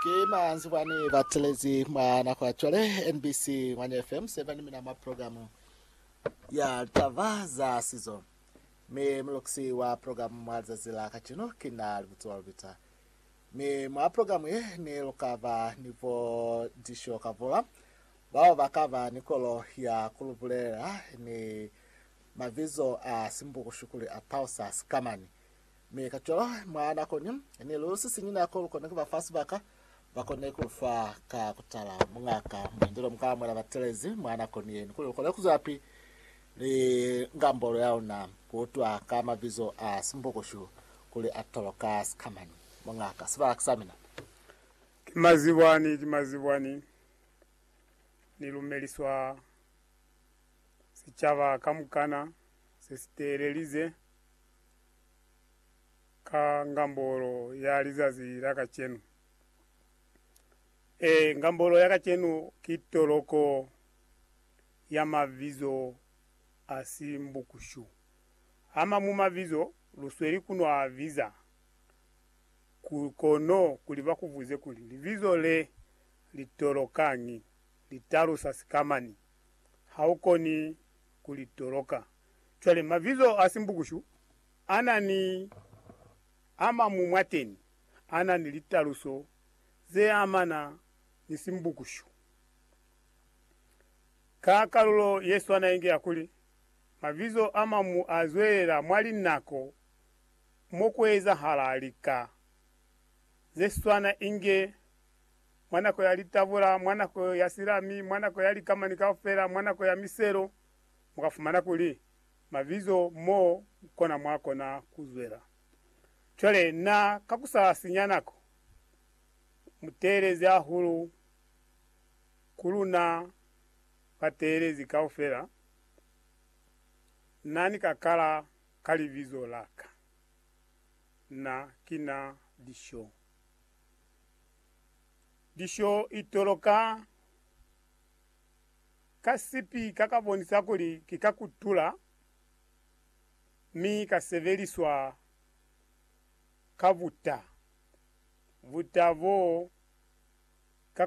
Ki manzwi bwani ba telezi mwa nako ya cwale, NBC Ngwanya FM 7, mina mwa programu ya Taba za Sizo. Mi mulukisi wa programu mwa lizazi la kacenu ki na Libutso Lubita. Mi mwa programu ye ni luka ba ni bo Disho Kavula, bao ba ka ba ni kolo ya ku lu bulelela ni mabizo a simbukushu kuli a Pausa Sikamani. Mi kacwalo, mwa nako ni ni lu sisiñi nako lu kona kuba fa sibaka, ba kone ku lu fa ka kutala muñaka muñwi jwalo muka amuhela batelezi mwa nako ni yeni, kuli lu kone kuzwelapi ni ngambolo ya luna, ku utwa ka mabizo a Simbukushu kuli a tolwa ka sikamani. Muñaka, sibaka sa mina. Ki mazibwani, ki mazibwani, ni lumeliswa sicaba kamukana se si teelelize. ka ngambolo ya lizazi la kacenu. Ee, ngambolo ya kacenu ki toloko ya mabizo a si mbukushu. A mañwi mabizo lu sweli ku no a biza, kono kuli ba ku buze kuli, Libizo le li tolokañi? Li talusa sikamañi? Ha u koni ku li toloka. Cwale, mabizo a simbukushu a na ni a mañwi mwateni a na ni litaluso ze amana ni simbukushu. Ka kalulo ye swana inge ya kuli, mabizo a mañwi a zwelela mwa linako mo ku ezahala lika ze swana inge mwa nako ya litavula, mwa nako ya silami, mwa nako ya likamani kaufela, mwa nako ya miselo, mu ka fumana kuli mabizo mo kona mwa kona ku zwela. Cwale na ka ku sa sinya nako, mu teelezi hahulu ku luna bateelezi kaufela, Na ni ka kala ka libizo la ka. Na ki na Lisho. Lisho i toloka. Ka sipi ka ka bonisa kuli ki ka kutula mi ka sebeliswa ka buta. Buta bo ka